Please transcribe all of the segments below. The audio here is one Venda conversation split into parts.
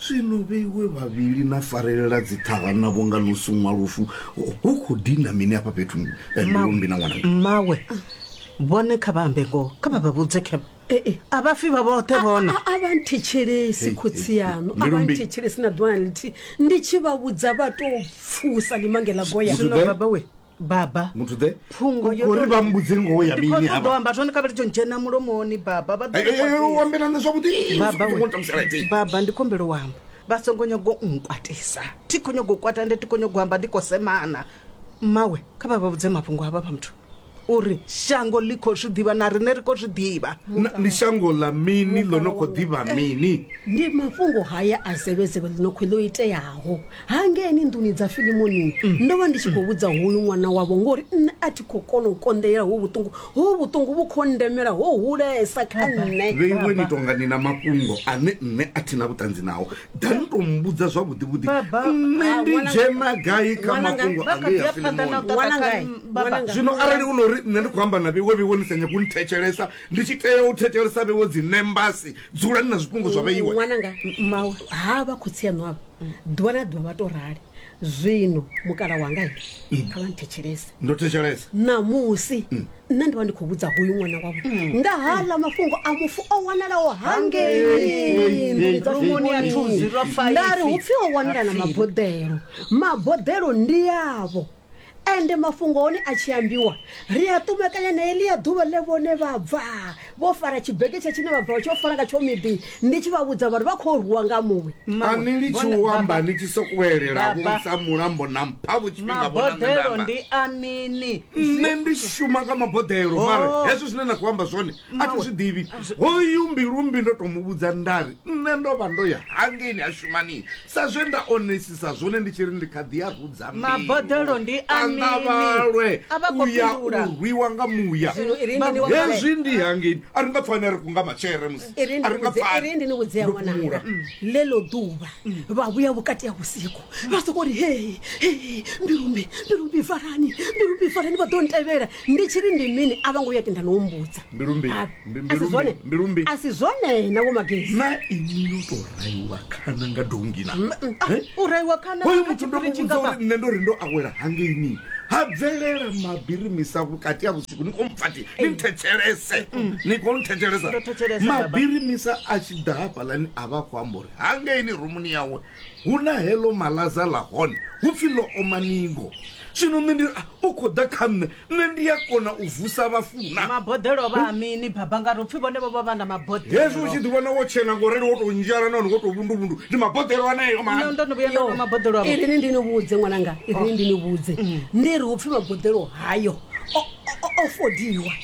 zwino vheiwe vhavhili na farelela dziṱhara na vhonga ḽo suṅwa lufu hu khou dina mini afha fhethu eh, mbilumbi na ṅwana mmawe vhone kha vha ambe ngoho kha vha vha vhudze khe a vha fi vha vhoṱhe vhona A- a- a vha nthetshelesi khotsi yaṋu a vha Mbilumbi. nthetshelesi na ḓuvha na ḽithihi ndi tshi vha vhudza vha tou pfusa ḽimange ḽa goya Zwino Zwiḓe. baba we baba muthu the phungo yo uri vha mbudze ngoho ya mini hapa ndo amba zwone kavhele tsho dzhena mulomoni baba vha ḓo u ambela na zwavhuḓi baba baba ndi khombelo wamba vha songo nyago nkwatisa thi kho nyago kwata ndi thi kho nyago amba ndi kho semana mawe kha vha vha vhudze mafhungo hava vha muthu uri shango ḽi khou zwi ḓivha na riṋe ri khou zwi ḓivha ndi shango ḽa mini ḽo no khou ḓivha mini ndi mafhungo haya a zevhezevhe ḽi no khou ḽo iteaho hangeni nḓuni dza filimoni ndo vha ndi tshi khou vhudza hoyu ṅwana wavho ngori nṋe a thi khou kona u konḓelela ho vhuṱungu ho vhuṱungu vhu khou ndemela ho hulesa kha nṋe vheiwe ni tonga ni na mafhungo ane nṋe a thi na vhuṱanzi nao da ni tou mbudza zwavhuḓivhuḓi Baba. nṋe Ah, ndi ṅwana- dzhena gai kha ṅwana nga- mafhungo vha kha ḓi anea ya phanḓa na u filimoni ṱaṱa Ṅwana kha ngai? nṋe, baba. Ṅwana ngai? zwino arali u no ri nṋe ndi khou amba na vheiwe vheiwe ni sa nyagi u nthetshelesa ndi tshi tea u thetshelesa vheiwe dzi nembasi dzulani na zwifhungo zwa vheiwe ṅwananga mawe ha vha khotsi aṋu avha ḓuvha na ḓuvha vha to rali zwino mukala wanga he kha vha nthetshelese ndo thetshelesa ṋamusi nṋe ndi vha ndi khou vhudza hoyu ṅwana wavho nga haḽa mafhungo a mufu o wanalaho hangei nḓuni dza Rumuni ya Thuzi, lwa Faifi. ndari hu pfi o wanala na maboḓelo maboḓelo ndi yavho Ende mafhungo a hone a tshi ambiwa, ri a ṱumekanya na heḽia ḓuvha ḽe vhone vha bva vho fara tshibegetsha tshine vha bva vha tshi yo fara ngatsho miḓi, ndi tshi vha vhudza vha ri vha khou rwiwa nga muṅwe. A ni litshi u amba ni tshi sokou elela vho sa mulambo na mpha vho tshifhinga vho na nṋe nda amba. Maboḓelo ndi a mini? Nṋe ndi shuma kha maboḓelo, mara hezwo zwine na khou amba zwone a thi zwi ḓivhi. Hoyu Mbilumbi ndo tou mu vhudza nda ri nṋe ndo vha ndo ya hangeini ha shuma ni Sa zwe nda onesisa zwone ndi tshi ri ndi kha ḓi a rudza mbeu. Maboḓelo ndi a A nga mini? vhalwe A vha khou u ya fhindula. u rwiwa nga muya. Zwino i ri ndi ni vhudze- Hezwi ndi hangeni a ri nga pfani a ri kunga matshele musi. i ri A ndi ri nga vhudze- i pfani. ri ndi ni vhudzea Ndo ṅwananga fhumula. ḽeḽo ḓuvha vha vhuya vhukati ha vhusiku vha sokou ri hei hei mbilumbi mbilumbi farani mbilumbi farani vha ḓo ntevhela ndi tshi ri ndi mini a vho ngo vhuya tenda na u mbudza Mbilu mbi- Ba- mbi- a mbilu si mbi- zwone mbilu mbi. a si zwone na vho magezi na ini yo to raiwa khana nga dongina Eh? u raiwa khana hoyo kha muthu ndo tshipiri muvhudza tshingafha. uri nṋe ndo ri ndo awela hangeini ha bvelela mabiri misa vhukati ha vhusiku ni kho mpfati ni nthetshelese ni kho nthetshelesa Ndo thetshelesa, baba. mabiri misa a tshi ḓa hafhaḽani a vha a khou amba uri hangeini rumuni yawe huna heḽo malaza ḽa hone hu pfi ḽo oma ningo. Zwino nṋe ndi ri, A, u khou ḓa kha nṋe, nṋe ndi a kona u vusa vhafu na? Maboḓelo o vha a mini, Baba? Ngauri hu pfi vhone vho vha vha na maboḓelo. Hezwi u tshi ḓiwana wo tshena ngo rali, wo tou nzhala nahone wo tou vhunduvhundu, ndi maboḓelo aneo mani. Nṋe ndo no vhuya nda nwa maboḓelo avho. Irini ndi ni vhudze, ṅwananga, irini ndi ni vhudze, ndi ri hu pfi maboḓelo hayo o, o, o fodiwa.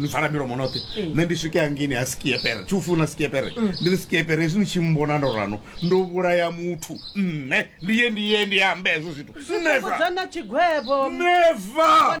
ni vala milomo noṱhe Mm. nṋe ndi swike hangini ha skiepere thi u funa skiepere Mm. ndi ri skiepere hezwi ni tshi mbona ndo rano ndo vhulaya muthu nṋe ndi ye ndi ye ndi ambe hezwo zwithu neva fhungudzana tshigwevho neva